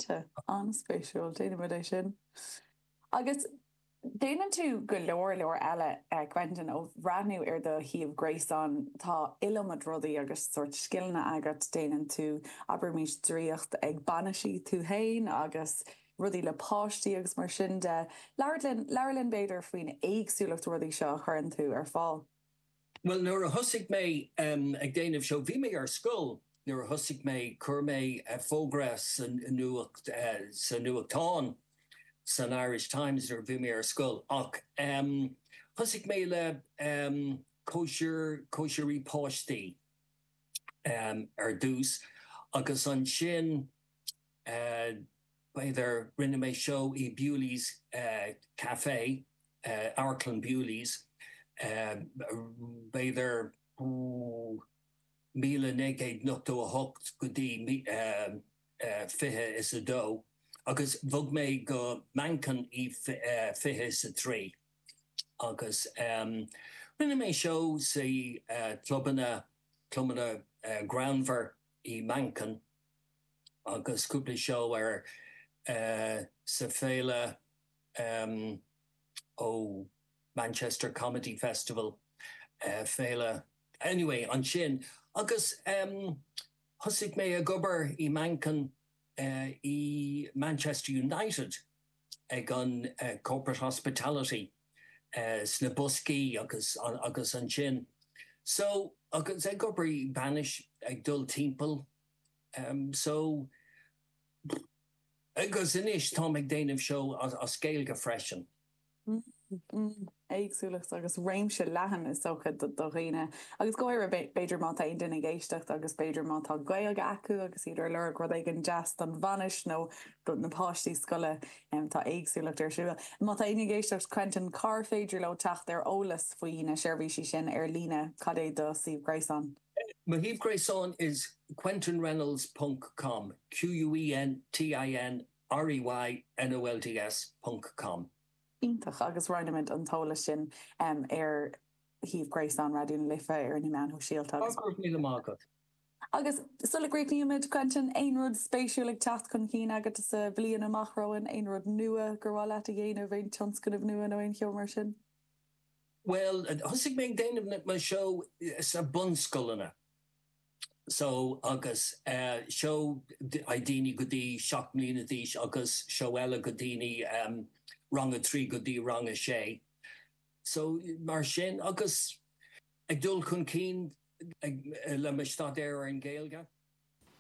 Sea, an-spéisiúil, déanann muid é sin. Agus déanann tú go leor, leor eile, Quentin, ó bhreathnú ar do shuíomh gréasáin, tá iliomad rudaí agus sórt scileanna agat, déanann tú abraimís draíocht ag bainisí, tú féin agus rudaí le páistí agus mar sin de. Labhair linn, labhair linn b'fhéidir faoin éagsúlacht rudaí seo a chuireann tú ar fáil. Bhuel, nuair a thosaigh mé ag déanamh seó, bhí mé ar scoil nuair a thosaigh mé, chuir mé fógra sa nuachtán, san Irish Times nuair a bhí mé ar scoil, ach thosaigh mé le cóisir, cóisirí páistí ar dtús agus ansin, b'fhéidir, rinne mé seó i Bewley's Café. Amharclann Bewley's, b'fhéidir, ó míle naoi gcéad nochtó a hocht go dtí fiche is a dó, agus bhog mé go Manchain i fiche is a trí, agus rinne mé seó sa clubanna, clubanna greannmhar i Manchain, agus cúpla seó ar sa Féile. ó Manchester Comedy Festival, féile, anyway, ansin agus thosaigh mé ag obair i Manchain i Manchester United ag an Corporate Hospitality sna boscaí agus agus ansin so agus ag obair i bainis ag dul timpeall so Agus anois táim ag déanamh seó as Gaeilge freisin. Mmm, mmm. Éagsúlacht agus réimse leathan is dócha do dhaoine, agus go háirithe b'fhéidir má tá aon duine ag éisteacht agus b'fhéidir má tá Gaeilge acu agus iad ar lorg rud éigin deas don bhainis nó do na páistí scoile, tá éagsúlacht ar siúl. Má tá aon duine ag éisteacht Quentin, cár féidir leo teacht ar eolas faoi na seirbhísí sin ar líne, cad é do suíomh gréasáin? Mo shuíomh gréasáin is quentinreynolds ponc com, q-u-e-n-t-i-n-r-e-y-n-o-l-d-s ponc com. Iontach, agus roinnimid an t-eolas sin ar shuíomh gréasáin Raidió na Life, ar na meáin shóisialta agus. Go raibh míle maith agat. Agus sula gcríochnaímid, Quentin, aon rud spéisiúil ag teacht chun cinn agat sa bhliain amach romhainn, aon rud nua gur mhaith leat a dhéanamh, aon tionscnamh nua nó aon cheo mar sin? Bhuel, thosaigh mé ag déanamh na, mo seó sna bunscoileanna. So, agus eh seó ag daoine go dtí seacht mbliana d'aois agus seó eile go daoine ehm rang a trí go dtí rang a sé. So, mar sin agus ag dul chun cinn ag, le mo staidéar ar an Ghaeilge.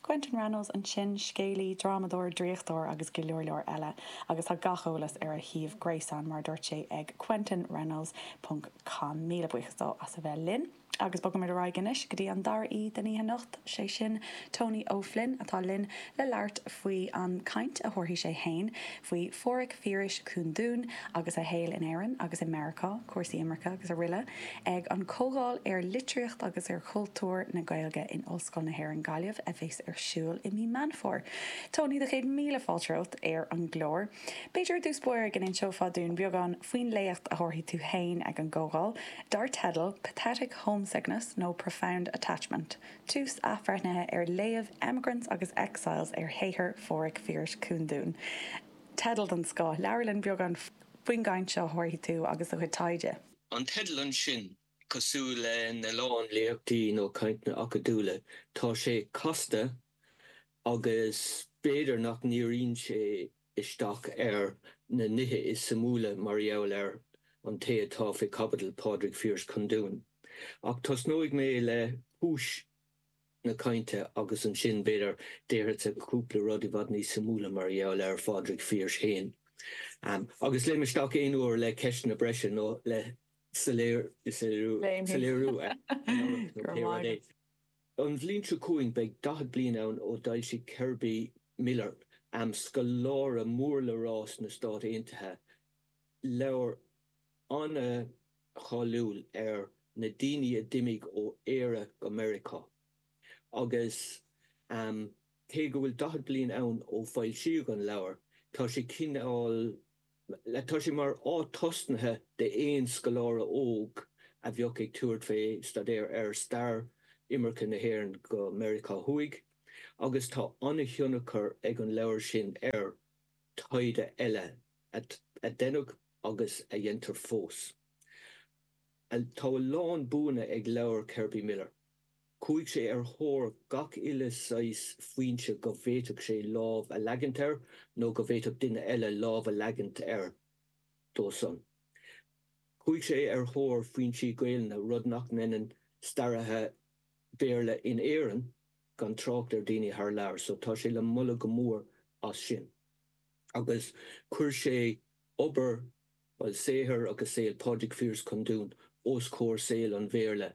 Quentin Reynolds ansin, scéalaí, drámadóir, draíochtóir agus go leor leor eile agus tá gach eolas ar a shuíomh gréasáin mar a dúirt sé ag Quentin Reynolds ponc com. Míle buíochas dó as a bheith linn agus bogaimid ar aghaidh anois go dtí an dara aoi den oíche anocht, sé sin Tony Ó Floinn atá linn le labhairt faoi an caint a thabharfaidh sé fhéin faoi Phádraig Phiarais Cúndún agus a shaol in Éirinn agus i Meiriceá, cúrsaí imirce agus aroile, ag an Comhdháil ar Litríocht agus ar Chultúr na Gaeilge in Ollscoil na hÉireann, Gaillimh, a bheas ar siúl i mí Meán Fómhair. Tony, do chéad míle fáilte romhat ar an gclár. B'fhéidir i dtús báire go n-inseofá dúinn beagán faoin léacht a thabharfaidh tú féin ag an gcomhdháil, dar teideal 'Pathetic Homesickness nó Profound Attachment? Tús athbhreithnithe ar léamh Emigrants agus Exiles ar shaothar Phádraig Phiarais Cúndún teideal den scoth. Labhair linn beagán faoin gcaint seo a thabharfaidh tú agus do chuid taighde. An teideal ansin, cosúil lena lán léachtaí nó cainteanna acadúla, tá sé casta agus b'fhéidir nach ndíríonn sé isteach ar na nithe is suimiúla mar gheall ar an té atá fé chaibidil, Pádraig Phiarais Cúndún. Ach tosnóidh mé le cúis na cainte agus ansin b'fhéidir déarfadsa cúpla rud i bhfad níos suimiúla mar gheall ar Phádraig Phiarais féin. Agus léim isteach aon uair le ceisteanna breise nó le soiléiriú ar an amharc nó pé rud é. An bhliain seo chugainn beidh 40 bliain ann ó d'fhoilsigh Kerby Miller, scoláire mór le rá sna Stáit Aontaithe, leabhar an-cháiliúil ar na daoine a d'imigh ó Éire go Meiriceá. Agus cé go bhfuil 40 bliain ann ó foilsíodh an leabhar, tá sé cineál. le, tá sé mar áit tosnaithe d'aon scoláire óg a bheadh ag tabhairt fé staidéar ar stair imirce na hÉireann go Meiriceá Thuaidh, agus tá an-thionchar ag an leabhar sin ar taighde eile a deineadh agus a dhéantar fós. Tá a lán buanna ag leabhar Kerby Miller. Chuaigh sé ar thóir gach uile shaghas foinse go bhféadfadh sé lámh a leagaint air nó go bhféadfadh duine eile lámh a leagaint air dó-san. Chuaigh sé ar thóir foinsí Gaelainne, rud nach ndeineann staraithe Béarla in Éirinn, gan trácht ar daoine thar lear, so tá sé le moladh go mór as sin. Agus chuir sé obair, bhuel, saothar agus saol Phádraig Phiarais Cúndún os comhair saol an Bhéarla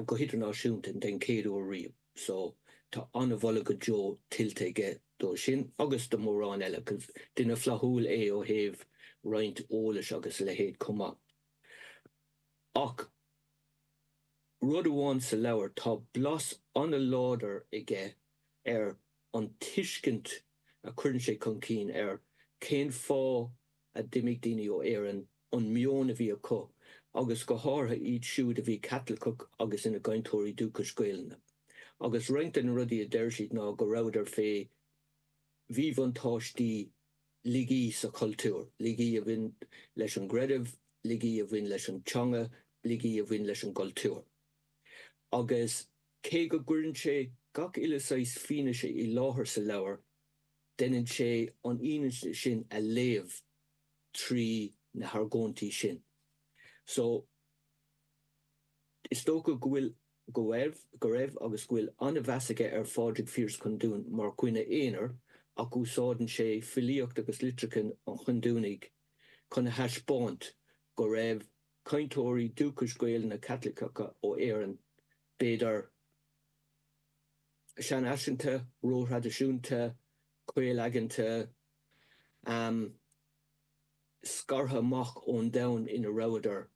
go hidirnáisiúnta den chéad uair riamh so tá an-mholadh go deo tuillte aige dó sin agus do mhórán eile 'cause duine flaithiúil é ó thaobh roinnt eolais agus a leithéid chomh maith. Ach rud amháin sa leabhar, tá blas an-láidir aige ar an tuiscint a chuireann sé chun cinn ar cén fáth, a d'imigh daoine ó Éirinn, an meon a bhí acu, agus go háirithe iad siúd a bhí Caitliceach agus ina gcainteoirí dúchais Gaelainne. Agus roinnt de na rudaí a deir siad ná go rabhadar fé mhíbhuntáistí laigí sa chultúr, laigí a bhain leis an gcreideamh, laigí a bhain leis an teanga, laigí a bhain leis an gcultúr. Agus cé go gcuireann sé gach uile saghas fianaise i láthair sa leabhar, Deineann sé an fhianaise sin a léamh trí na hargóintí sin. So, is dócha go bhfuil, go raibh, go raibh agus go bhfuil an-mheas aige ar Phádraig Phiarais Chondúin mar dhuine aonair ach úsáideann sé filíocht agus litreacha an Chondúnaigh chun a thaispeáint go raibh cainteoirí dúchais Gaelainne Caitliceacha ó Éirinn, b'fhéidir, seanfhaiseanta, róthraidisiúnta, caol-aigeanta, amh, scartha amach ón domhan ina rabhadar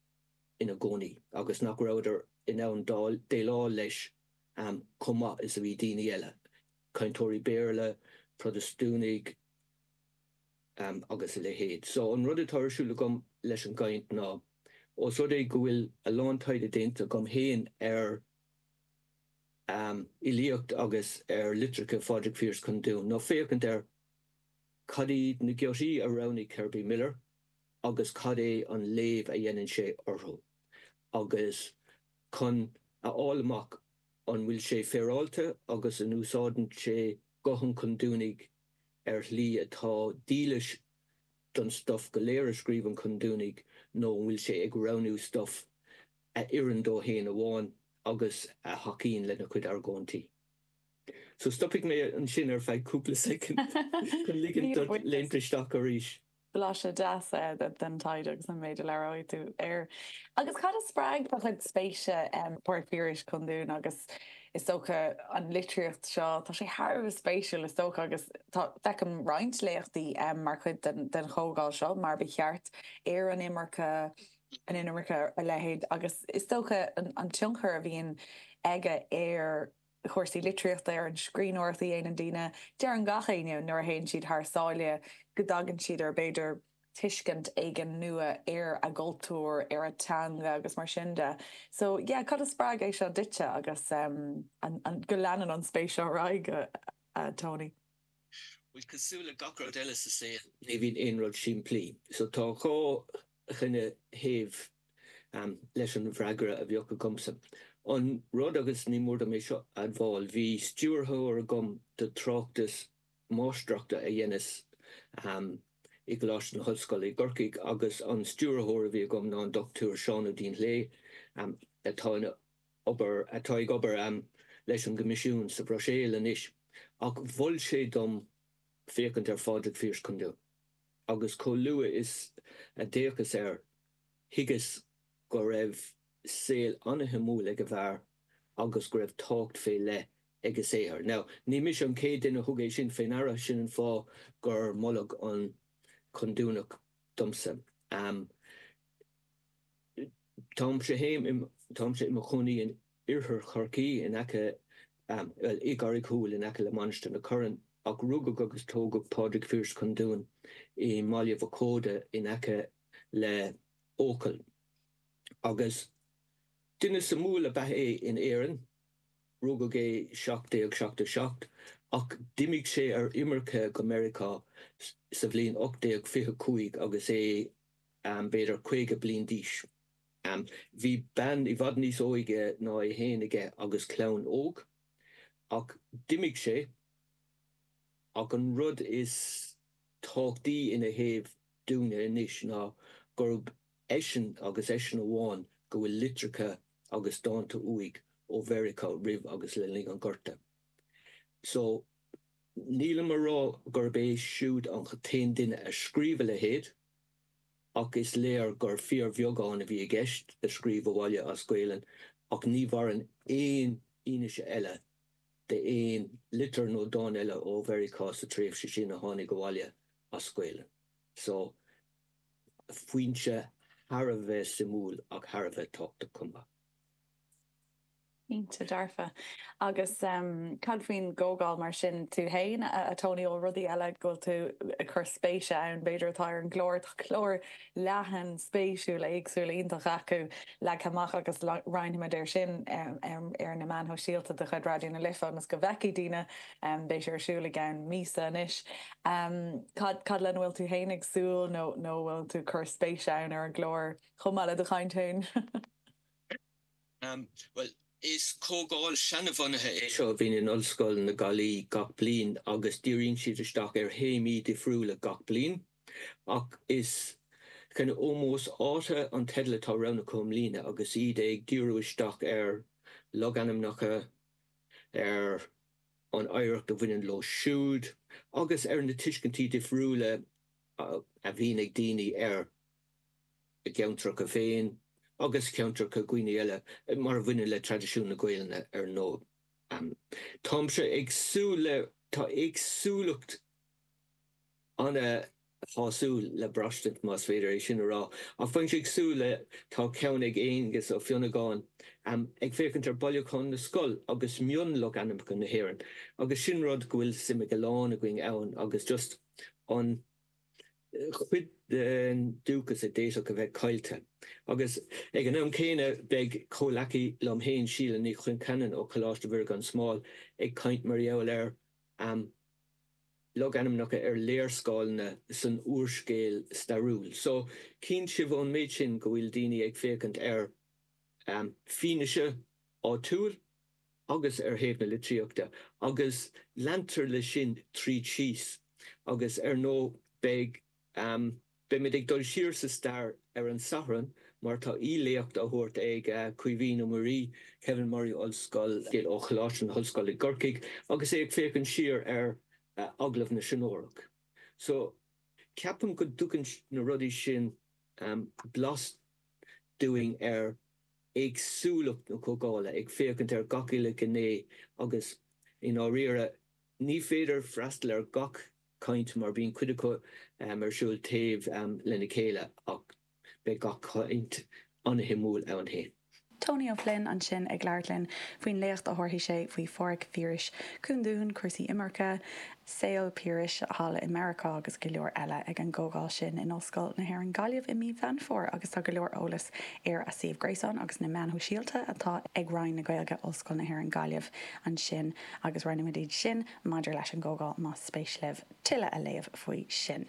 ina gcónaí agus nach rabhadar in ann déileáil leis chomh maith is a bhí daoine eile, cainteoirí Béarla, Protastúnaigh agus a leithéid. So an rud atá ar siúl agam leis an gcaint ná, os rud é go bhfuil a lán taighde déanta agam féin ar. am, fhilíocht agus ar litreacha Phádraig Phiarais Chúndúin ná féachaint ar cad iad na giotaí a roghnaigh Kirby Miller agus cad é an léamh a dhéanann sé orthu agus chun a fháil amach an bhfuil sé féaráilte agus an úsáideann sé guth an Chondúnaigh ar shlí atá dílis don stuif go léir a scríobh an Condúnach nó an bhfuil sé ag roghnú stuif a oireann dó féin amháin agus a thacaíonn lena chuid argóintí. So stopfaidh mé ansin ar feadh cúpla soicind chun ligint dot léimt isteach arís. Blaiseadh deas den taighde agus an méid a labhróidh tú air. Agus cad a spreag do chuid spéise i bPádraig Piarais Condún agus is dócha an litríocht seo? Tá sé thar a bheith spéisiúil is dócha agus tá, feicim roinnt léachtaí mar chuid den chomhdháil seo mar ba cheart ar an imirce, an inimirce a leithéid agus is dócha an tionchar a bhíonn aige ar chúrsaí litríochta, ar an scríbhneoireacht a dhéanann daoine. Deireann gach éinne nuair a théann siad thar sáile go dtagann siad ar b'fhéidir tuiscint éigin nua ar a gcultúr, ar a teanga agus mar sin de. So yeah, cad a spreag é seo duitse agus an go leanann an spéis seo ar aghaidh, a Tony? Bhuel, cosúil le gach rud eile sa saol, ní bhíonn aon rud simplí. So tá dhá. dhuine thaobh leis an bhfreagra a bheadh agamsa. An rud, agus ní mór dom é seo a admháil, bhí stiúrthóir agam do tráchtas máistreachta a dheineas i gColáiste na hOllscoile i gCorcaigh agus an stiúrthóir a bhí agam ná an Dr Seán Ó Duinnshléibhe atá ina obair, atá ag obair leis an gCoimisiún sa Bhruiséil anois. Ach mhol sé dom féachaint ar Phádraig Phiarais Cúndún. agus chomh luath is a d'fhéachas air, thuigeas go raibh saol an-shuimiúil ag an bhfear agus go raibh tábhacht fé leith ag a shaothar. Now, ní mise an chéad duine a thug é sin fé ndeara, sin an fáth gur moladh an Cúndúnach domsa. Táimse fhéin, táimse im chónaí in. Oirthear Chorcaí in aice, bhuel, i gCarraig Thuathail in aice le Mainistir na Corann, ach rugadh agus tógadh Pádraig Phiarais Cúndún i mBaile Mhac Óda in aice le Eochaill. Agus duine suimiúil ab ea é in Éirinn, rugadh é 1777 ach d'imigh sé ar imirce go Meiriceá sa bhliain 1825 agus é b'fhéidir 50 bliain d'aois. Bhí bean i bhfad níos óige ná é féin aige agus clann óg. Ach d'imigh sé. Ach an rud is tábhachtaí ina thaobh dúinne anois ná gurb eisean agus eisean amháin go bhfuil litreacha agus dánta uaidh ó Mheiriceá roimh agus le linn an Ghorta. So, nílim a rá gurb é siúd an t-aon duine a scríobh a leithéid. ach is léir gur fíorbheagán a bhí i gceist a scríobh abhaile as Gaelainn, ach ní mhaireann aon fhianaise eile d'aon litir nó dán eile ó Mheiriceá sa tréimhse sin a tháinig abhaile as Gaelainn. So, foinse thar a bheith suimiúil ach thar a bheith tábhachtach chomh maith. Cinnte dearfa. Agus cad faoin gcomhdháil mar sin? Tú fhéin, a Tony, bhfuil rudaí eile go bhfuil tú ag cur spéise ann, b'fhéidir, atá ar an gclár, tá clár leathan spéisiúil éagsúil iontach acu leagtha amach agus roinnfimid é sin ar na meáin shóisialta de chuid Raidió na Life ionas go bhfeicfidh daoine, beidh sé ar siúl i gceann míosa anois. Cad lena bhfuil tú fhéin ag súil nó a bhfuil tú ag cur spéise ann ar an gclár chomh maith le do chaint fhéin? Bhuel, is comhdháil seanabhunaithe é seo a bhíonn in Ollscoil na Gaillimhe gach bliain agus díríonn siad isteach ar théamaí difriúla gach bliain. Ach is Ómós Áite an teideal atá roghnaithe acu i mbliana agus iad ag díriú isteach ar logainmneacha, ar an oidhreacht a bhaineann leo siúd agus ar na tuiscintí difriúla a bhíonn ag daoine ar. a gceantracha féin agus ceantracha daoine eile mar a bhaineann le traidisiún na Gaolainne ar ndóigh. Táimse ag súil le, tá éagsúlacht ana-shásúil le braistint, más féidir é sin a rá, ach bheinnse ag súil le, tá ceann ag Aengus Ó Fionnagáin, ag féachaint ar Bhailiúchán na Scol agus mionlogainmneacha na hÉireann agus sin rud go bhfuil suim ag a lán againn ann agus just an, chuid den dúchas a d'fhéadfadh a bheith caillte. Agus ag an am céanna beidh comhleacaí liom fhéin, Síle Ní Choincheannain ó Choláiste Mhuire Gan Smál ag caint mar gheall ar logainmneacha ar léarscáileanna san úrscéal stairiúil. So chíonn sibh ón méid sin go bhfuil daoine ag féachaint ar fianaise áitiúil. agus ar thaobh na litríochta agus leantar leis sin tríd síos agus ar ndóigh beidh, beimid ag dul siar sa stair ar an Satharn mar tá aoi-léacht á thabhairt ag Caoimhín Ó Muirigh, Kevin Murray Ollscoil, ó Choláiste na hOllscoile i gCorcaigh agus é ag féachaint siar ar Agallamh na Seanórach. So, ceapaim go dtugann na rudaí sin blas dúinn ar. éagsúlacht na comhdhála, ag féachaint ar gach uile ghné agus, i ndáiríre, ní féidir freastal ar gach caint mar bíonn cuid acu ar siúl taobh lena chéile ach beidh gach caint ana-shuimiúil ann féin. Tony Ó Floinn ansin ag labhairt linn faoin léacht a thabharfaidh sé faoi Phádraig Phiarais Cúndún, cúrsaí imirce, saol Phiarais thall i Meiriceá agus go leor eile ag an gcomhdháil sin in Ollscoil na hÉireann Gaillimh i mí Mheán Fómhair agus tá go leor eolas ar a suíomh gréasáin agus na meáin shóisialta atá ag Roinn na Gaeilge, Ollscoil na hÉireann Gaillimh ansin agus roinnfimid iad sin maidir leis an gcomhdháil más spéis libh tuilleadh a léamh faoi sin.